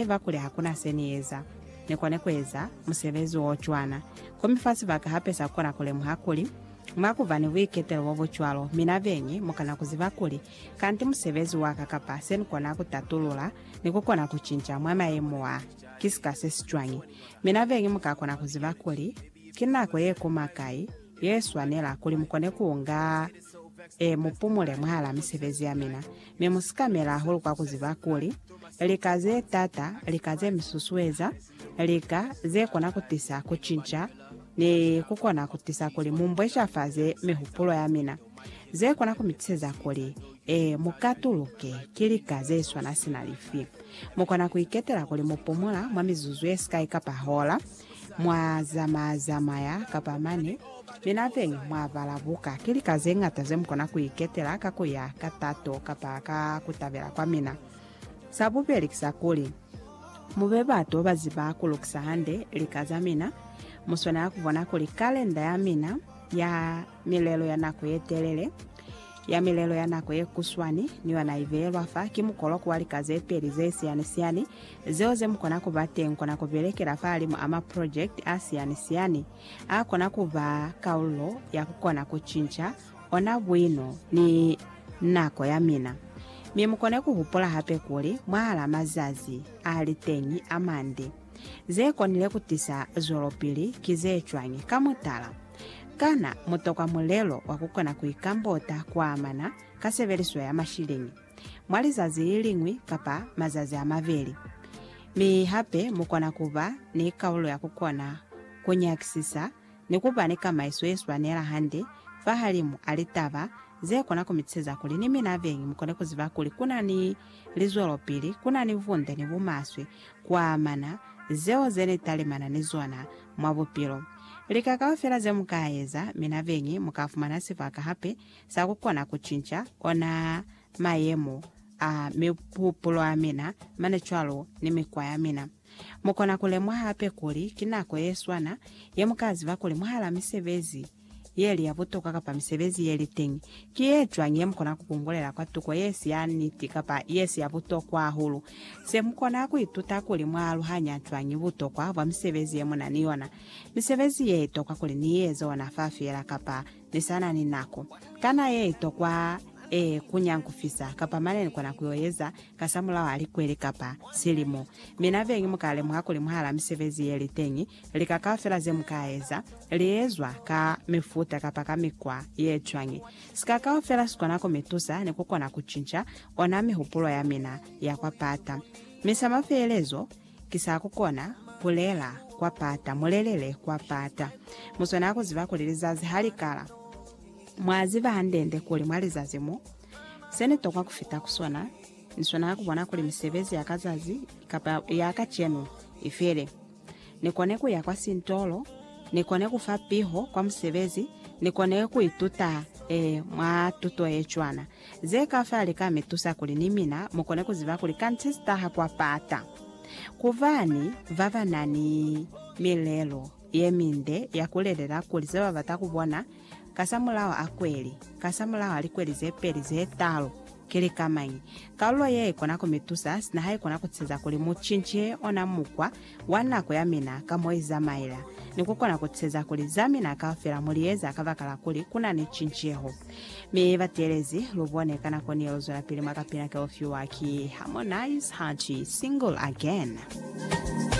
Neba kuli hakuna se Ni eza, Ni kone kueza musebezi wo cwana. Komi fa sibaka hape sa kona kulemuha kuli, mwa kuba ni buiketelo bo bu cwalo, mina beñi mukana kuziba kuli, kanti musebezi waka kapa se nikona kutatulula ni kukona kucinca mwa mayemo a, ki sika se si cwañi. Mina beñi muka kona kuziba kuli, ki nako ye kuma kai ye swanela kuli mukone kuunga, e, mupumule mwahala misebezi ya mina. Mi mu sikamela hahulu kwa kuziba kuli, lika ze taata, lika ze mi susueza, lika ze kona kutisa kucinca, ni kukona kutisa kuli mu mbweshafaze mihupulo ya mina, ze kona ku mi tiseza kuli, e, mu katuluke, ki lika ze swana sina lifi. Mu kona ku iketela kuli mu pumula mwa mizuzu ye sikai kapa hola, Mwa zamaya-zamaya kapa mane, mi napeñi mwa bala buka. Ki lika ze ñata ze mu kona ku iketela ka ku ya ka tato kapa ka ku tabela kwa mina. Sa bubeli ki sa kuli, mu be batu ba ziba ku lukisa hande lika za mina. Mu swanela ku bona kuli kalenda ya mina ya milelo ya nako ye telele, ya milelo ya nako ye kuswani, ni yona ibeyelwa fa ki mukoloko wa lika ze peli ze siyani-siyani, zeo ze mukona kuba teñi kona kubelekela fahalimu a maprojekiti a siyani-siyani a kona kuba kalulo ya kukona kucinca ona buino ni nako ya mina. Mi mukone kuhupula hape kuli, mwahalaa mazazi a li teñi a mande, ze konile kutisa zwelopili ki ze cwañi? Ka mutala, Kana mu tokwa mulelo wa ku kona ku ikambota ku amana ka sebeliso ya mashilini mwa lizazi li liñwi kapa mazazi a mabeli? Mi hape mu kona ku ba ni kaulo ya ku kona ku nyakisisa ni ku ba ni kamaiso ye swanela hande fahalimu a litaba ze kona ku mi tuseza kuli ni mina beñi mu kone ku ziba kuli ku na ni lizwelopili, ku na ni bunde ni bumaswe, kuamana, zeo ze ni talimana ni zona mwa bupilo. Lika kaufela ze mu ka eza, mi nabeñi mu ka fumana sibaka hape sa ku kona ku cinca ona mayemo a mihupulo a mina, mane cwalo ni mikwa ya mina. Mu kona ku lemuha hape kuli ki nako ye swana ye mu ka ziba kuli mwahal'a misebezi, yeli ya butokwa kapa misebezi yeli teñi ki yecwañi yemukona kukungulela kwa tuko yesi ya niti kapa yesi ya butokwa hahulu? Se mukona kuituta kuli mwaaluhanya cwañi butokwa bwa misebezi yemuna ni yona. Misebezi ye itokwa kuli niieze ona fa feela kapa nisana ni nako. Kana ye itokwa e kunya nkufisa kapa mane nikona kuyoeza kasamulaho a likweli kapa silimo? Mina beñi mukalemuha kuli mwahala misebezi yeli teñi Lika kaufela ze mu ka eza, li ezwa ka mifuta kapa ka mikwa ye cwañi, sika kaufela si kona ku mi tusa ni ku kona ku cinca ona mihupulo ya mina ya kwa pata. Mi sa mafeelezo, ki sa ku kona ku lela kwa pata, mu lelele kwa pata. Mu swanela ku ziba kuli lizazi ha li kala. Mwa ziba hande-nde kuli mwa lizazi mo. Se ni tokwa ku fita ku sona, ni swanela ku bona kuli misebezi ya ka zazi kapa ya kacenu i fele. Ni kone ku ya kwa sintolo, ni kone ku fa piho kwa musebezi, ni kone ku ituta eh, mwa tuto ye cwana. Ze kaufela li ka mi tusa kuli ni mina mu kone ku ziba kuli kanditi si taha kwa pata. Ku bani ba ba na ni milelo ye minde ya ku lelela kuli ze ba bata ku bona kasamulaho a kweli, kasamulaho a likweli ze peli, ze talu, Ki lika mañi kalulo ye ikona ku mi tusa sina ha ikona ku ceza kuli mu cince ona mukwa wa nako ya mina ka mo i zamaela, ni ku kona ku ceza kuli za mina kaufela mu li eza kabakala kuli ku na ni cinceho? Mi bateelezi, lu bone ka nako ni ye lu zwelapili mwa kapina ke u fiwa ki Harmonize ha ki Single Again.